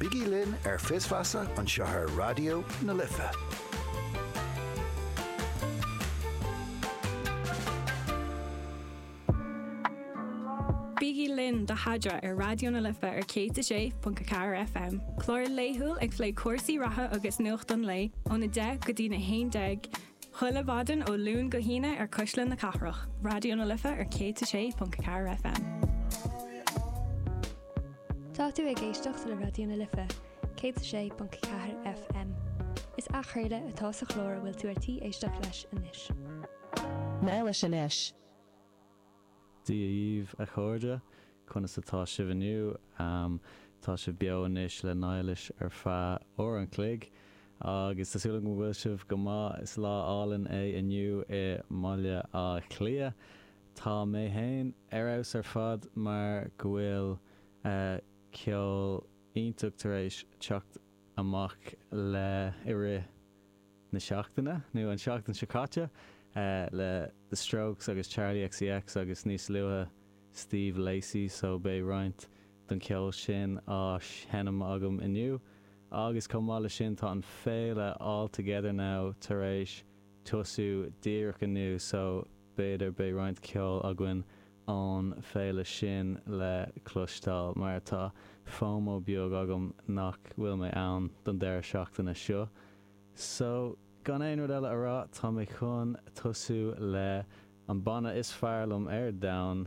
Bígí linn ar Fios Feasa anseo ar Raidió na Life. Bígí linn do Adhmhaidin ar Raidió na Life ar 106.4 FM, clár laethúil ag plé cúrsaí reatha agus nuacht an lae ón 10 go dtí na 11 Chuile mhaidin ó Luan go hAoine ar Chuisle na Cathrach, Raidió na Life ar 106.4 FM. Tá tú ag éisteacht le Raidió na Life, 106.4 FM. Is athchraoladh atá sa chlár a bhfuil tú ar tí éisteacht leis anois. Mail leis anois. Dia daoibh, a chairde, conas atá sibh inniu? Tá sibh beo anois le Niallais ar feadh uair an chloig agus tá súil agam go bhfuil sibh go maith. Is lá álainn é inniu i mBaile Átha Cliath. Tá mé féin ar fheabhas ar fad mar go bhfuil ceol iontach tar éis teacht amach le i rith na seachtaine, nó an tseachtain seo caite, le The Strokes agus Charli XCX agus níos luaithe Steve Lacey so beidh roinnt don cheol sin á sheinm agam inniu agus chomh maith le sin tá an féile All Together Now tar éis tosú díreach inniu so b'fhéidir beidh roinnt ceol againn ón féile sin le cloisteáil mar tá fomo beag agam nach bhfuil mé ann don deireadh seachtaine seo. So, gan aon rud eile a rá, tá mé chun tosú le an banna is fearr liom ar domhan,